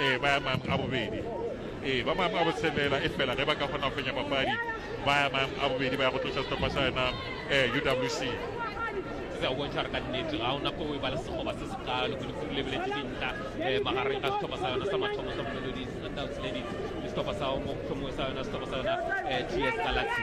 ee ba ya maemong a bobedi ee ba maemong a botshelela e fela ge ba ka kgona go fenya papadi ba ya maemong a bobedi ba ya go tloša setlhopha sa yona ee uwc se a bontšha gore ka nnete ga ona ko o e ba le segoba se se kalo kudu kudu lebeletse dintlha um magareng ga setlhopha sa yona sa mathomo sa molelodi sundowns ladies le setlhopha sa motlhomongwe sa yona setlhopha sa yona um ts galaxy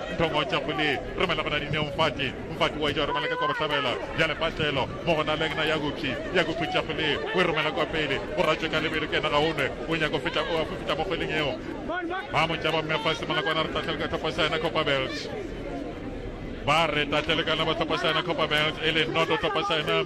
Nthong'o Chapuli, Romela gona Dineo Mfati, Mfati wa e ja romela ka kwa Bohlabela, bjale Patlelo, mo gona Leng na ya Gupshi, ya Gupshi Chapuli, o e romela kwa pele, o ratšwe ka lebelo ke na ga o nwe, o nyaka o feta o a fufita mo kgweleng yeo. Ba mo tšaba mme fa simola kwana re tatlhele ka tlhopho sa yena Copperbelt. Ba re tatlhele kana ba tlhopho sa yena Copperbelt e le noto tlhopho sa yena.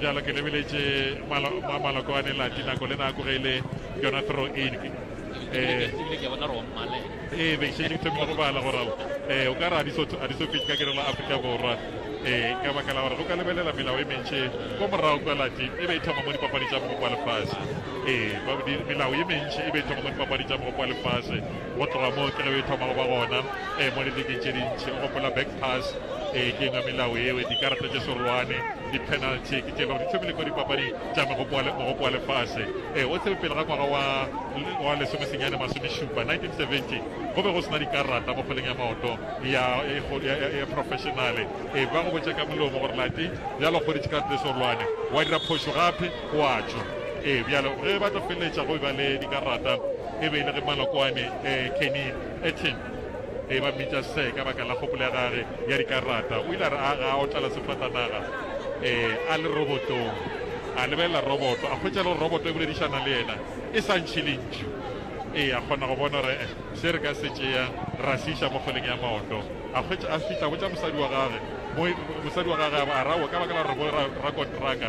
Bjalo ke lebeletše maloko a nelati nako le nako ge e le yona throw in eh, ee be šetše ke thomile go bala gore ee o ka re a di so fitse ka kerela aforika borwa ee ka baka la gore go ka lebelela melao e mentši ko morago kwa lati e be e thoma mo dipapadi tša mogopo wa lefase ee melao e mentši e be e thoma mo dipapadi tša mogopo wa lefase Go tloga moo ke ge e thoma go ba gona e mo liligeng tše dintši. O gopola back pass e ke engwe melao ewe, dikarata tše serolwane, di-penalty ke tše le gore di thomile kwa dipapading tša mogopo wa lefase. E o tsebe pele ga ngwaga wa wa lesomesenyane masomešupa 1970 go be go sena dikarata mo kgweleng ya maoto ya ya professionale. E ba go botša ka molomo gore lati bjalo kgodi dikarata tše serolwane wa dira phošo gape O a tšwa. Ee, bjalo ge ba tla feleletša go eba le dikarata e be e le ge malokwane eh, Kenny Etin e ba mmitša se ka baka la kgopolo ya gage ya dikarata o ile a re a ga o tlala sefatanaga um a le robotong a lebelela roboto a kgwetša le roboto e boledišana le yena e sa ntšhi le ntši ee a kgona go bona gore eh, se re ka se tšea ra se iša mo kgoleng ya maoto a kgwetša a fitlha botša mosadi wa gage mosadi wa gage a rawo ka baka la gore bo rakontraka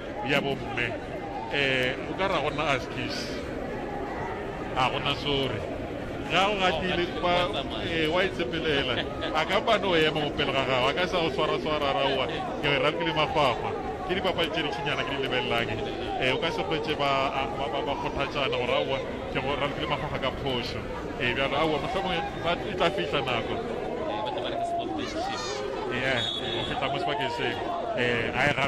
bja bomme eh o ka ra go na askies a go na sorry ga o gatile kwa eh wa itsepelela a ka ba no ema mo pele ga gago a ka sa go swara swara ra wa ke re ra kile mafahwa ke di papa tše di tšinyana ke di lebelelake eh o ka se kwetse ba ba ba ba kgothatšana go ra wa ke go ra kile mafahwa ka phošo eh bjalo a wa mohlomong ba e tla fihla nako eh o fihla mo sebakeng se eh ga e ga